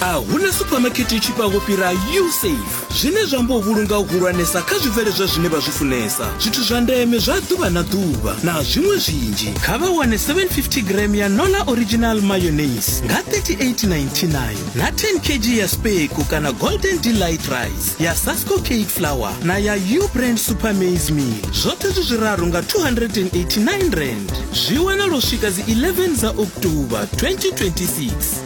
a huna suphamakete i tshifhaho fhira usafe zwine zwa amba u vhulunga u hulwanesa kha zwibveledzwa zwine vha zwi funesa zwithu zwa ndeme zwa ḓuvha na ḓuvha na zwiṅwe zwinzhi kha vha wane 750 gram ya nola original mayonnaise nga 3899 na 10 kg ya speko kana golden delight rice ya sasco cake flour na ya u brand super maize meal zwoṱhe zwi zwiraru nga 289 rand zwi wanala u swika dzi 11 dza oktoba 2026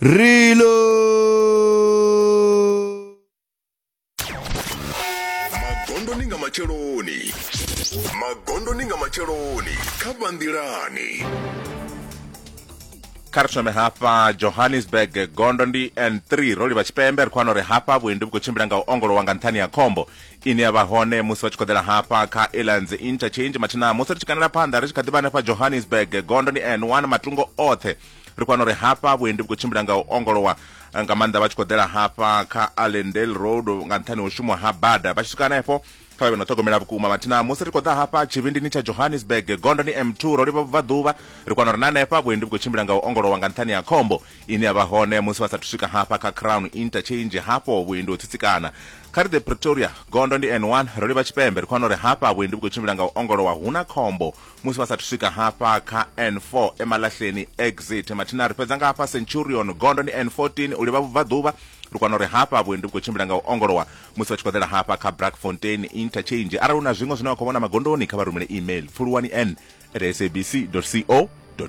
Reload. magondo ni nga matsheloni magondo ni nga matsheloni kha banḓilani kha ri thome hafha johannesburg gondo ndi n3 ro livha tshipembe ri khou wana uri hafha vhuendi vhu khou tshimbila nga u ongolowa nga nṱhani ha khombo ine ya vha hone musi vha tshi khoḓela hafha kha elands interchange mathina musi ri tshi kanela phanḓa ri tshi kha ḓivha hanefha johannesburg gondo ni n1 matungo oṱhe ri khou wana uri hafha vhuendi vhu khou tshimbila nga u ongolowa nga maanḓa vha tshi khou ḓela hafha kha allendale road nga nṱhani ho shumwa ha bada vha tshi swika hanefho kha vhe no ṱhogomela vhukuma mathina musi ri khou ḓa hafha tshivhindini tsha johannesburg gondo ni m2 ro livha vhubvaḓuvha ri kwana uri na hanefha vhuendi vhu khou tshimbila nga u ongolowa nga nṱhani ha khombo ine ya vha hone musi vha sathu swika hafha kha crown interchange hafho vhuendi ho tsitsikana kha ri the pretoria gondo ndi n1 ro livha tshipembe ri khou wana uri hafha vhuendi vhu khou tshimbila nga u ongolowa hu na khombo musi vha sathu swika hafha kha n4 emalahleni exit mathina ri fhedza nga hafha centurion gondo ndi n14 u livha vhubvaḓuvha ri kwana uri hafha vhuendi vhu khou tshimbila nga u ongolowa musi vha tshi khou ḓela hafha kha brackfontein interchange arali hu na zwiṅwe zwine wa khou vhona magondoni kha vha rumele email pfuluwani n at sabc co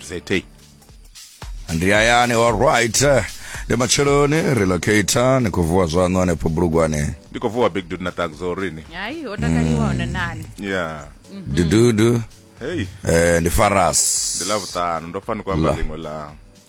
za ndi hayani alright ndi matsheloni relocator ni khou vuwa zwaṋu hanefho bulugwane ndi khou vuwa big dude na tagzo rini hayi ho takaliwa hone nani ya dududu hey eh ndi faras ndi ḽavhuṱanu ndo pfa ni khou amba La. ḽiṅwe ḽa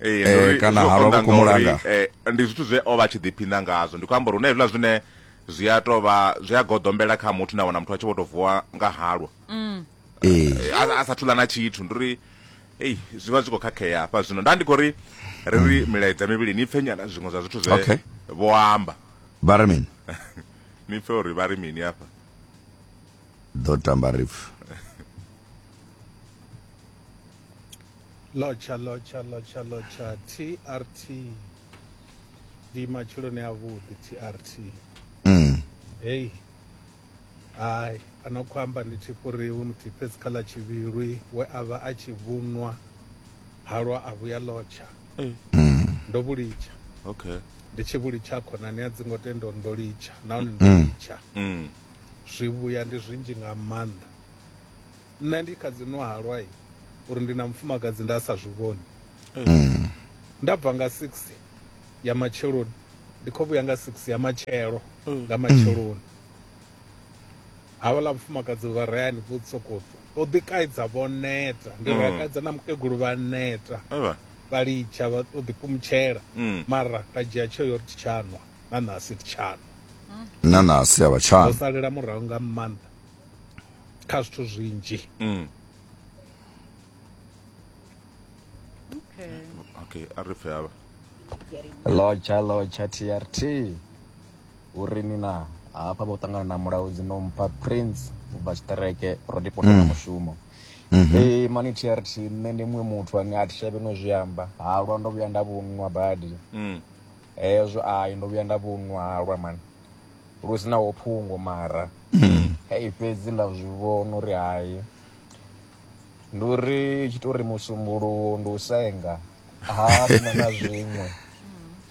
eh, kana ha vha vhukumulanga eh, ndi zwithu zwe o vha tshi ḓiphina ngazwo ndi khou amba uri hu na hezwiḽa zwine zwi a tou vha zwi a goḓombela kha muthu na wana muthu a tshi vho tou vuwa nga halwa mm. eh. a sa thula na tshithu ndi uri ei zwi vha zwi khou khakhea hafha zwino nda ndi khou ri ri ri mm. milaedza mivhili ni pfe nyana zwiṅwe zwa zwithu zwe vho amba vha ri mini ni pfe uri vha ri mini hafha ḓo tamba ripfu lotsha lotsha lotsha lotsha trt ndi matshiloni avhuḓi trt mm. hei hai ano khou amba ndi tshifhuriwi muthihi fhedzi kha ḽa tshivhilwi we a vha a tshi vhunwa halwa a vhuya lotsha mm. ndo vhulitsha okay ndi tshi vhulitsha khonani a dzi ngo tenda uri ndo litsha nahone ndo mm. litsha mm. zwi vhuya ndi zwinzhi nga maanḓa Nṋe ndi kha dzi nwa halwa i uri ndi na mufumakadzi nda sa zwi vhoni. Mm. Nda bva nga 6 ya matsheloni ndi kho vhuya nga 6 ya matshelo mm. nga matsheloni. Havhala mufumakadzi vha rayani vho tsokotso. O ḓi kaidza vho neta, ndi ra mm. kaidza na mukegulu vha neta. Vha litsha vha o ḓi kumutshela. Mm. Mara ra dzhia tsho yo ri tshanwa na nasi tshanwa. Na nasi a vha tshanwa. Salela murahu nga mannḓa. kha zwithu zwinzhi mm. okay okay a ri pfe hava lotsha lotsha trt uri ni na hafha vho ṱangana na mulaudzi no mpha prince u bva tshiṱereke ro ndi posa mm. mushumo mhm. ee mani trt nṋe ndi muṅwe muthu ane a thishavhe no zwi amba halwa ndo vhuya nda vhunwa badi mm. hezwo ai ndo vhuya nda vhunwa halwa mani lu si naho phungo mara mm. hei fhedzi nda zwi vhona uri hai ndi uri tshi to uri musumbuluwo ndi u senga ha na na zwiṅwe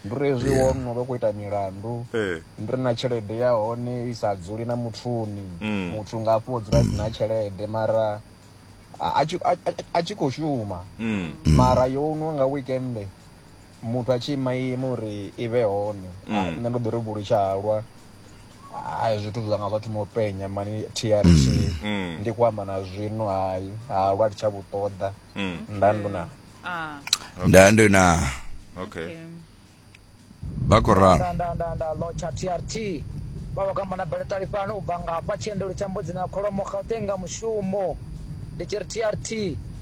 ndi uri hezwi wo no vha khou ita milandu eh. ndi ri na tshelede ya hone i sa dzuli na muthuni mm. muthu nga afho dzula si na tshelede mara a tshi khou shuma mm. mara yo nwa nga weekende muthu a tshi ima ima uri i vhe hone Ah, nṋe ndo ḓi ri vhulu tsha halwa hayi zwithu zwanga zwa thoma u penya mani trt ndi ku amba na zwino hayi halwa ndi tsha vhu ṱoḓa nda ndo na Ah, nda ndo na okay okay. vha khou ralo nda nda nda nda lotsha trt vha vha kamba na beletali fhano u bva ngafha tshiendelo tsha mbudzi na kholomo gauteng nga mushumo ndi tshi ri trt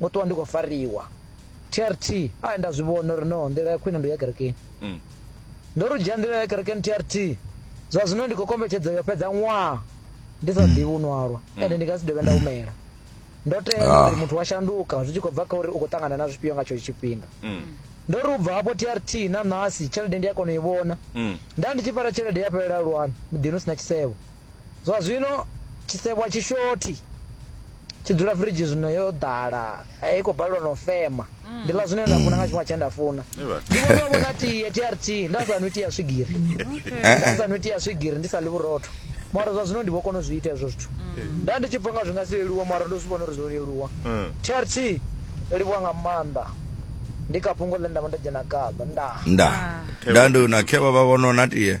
ngo ṱuwa ndi khou fariwa trt a nda zwi vhona uri no nḓila ya khwine ndi ya kerekeni mm. ndo ri dzhia nḓila ya kerekeni trt zwa zwino ndi khou kombetshedzo yo fhedza ṅwaha ndi sa ḓivhi u nwalwa mm. ende ndi nga si dovhe nda humela ndo tea ah. uri muthu wa shanduka zwi tshi khou bva kha uri u khou ṱangana na zwifhio nga tshetsho tshifhinga mm. ndo ri u bva hafho trt na nasi tshelede ndi a kona u i vhona nda ndi tshi fara tshelede ya fhelela lwani muḓini u si na tshisevho Zwa zwino tshisevho a tshi shothi, tshi dzula firidzhi zwino yo ḓala, i khou balelwa na u fema. Ndi ḽa zwine nda funa nga tshifhinga tshine nda funa. Ndi vhona vho na tie TRT nda sa nwi tia swigiri. Nda sa nwi tia swigiri ndi sa ḽi vhurotho. Mara zwa zwino ndi vho kona u zwi ita hezwo zwithu. Nda ndi tshi pfa nga zwi nga si leluwe mara ndo zwi vhona uri zwo leluwa. TRT yo livhuwa nga maanḓa. Ndi kha fhungo ḽe nda vha ndo dzhena khaḽo. Ndaa. Ndaa. Nda ndi na khevha vha vhono na tie.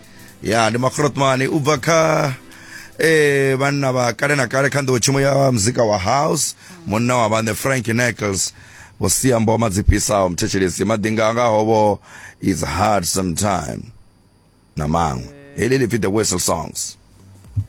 ya ndi makrotmani u bva kha eh vhanna vha kale na kale kha nḓowetshumo ya muzika wa house munna wa vhaṋe frank nichols vho sia mboma dzi fhisaho muthetshelesi maḓinga anga hovo is hard sometime na maṅwe heḽi ḽi pfi the whistle songs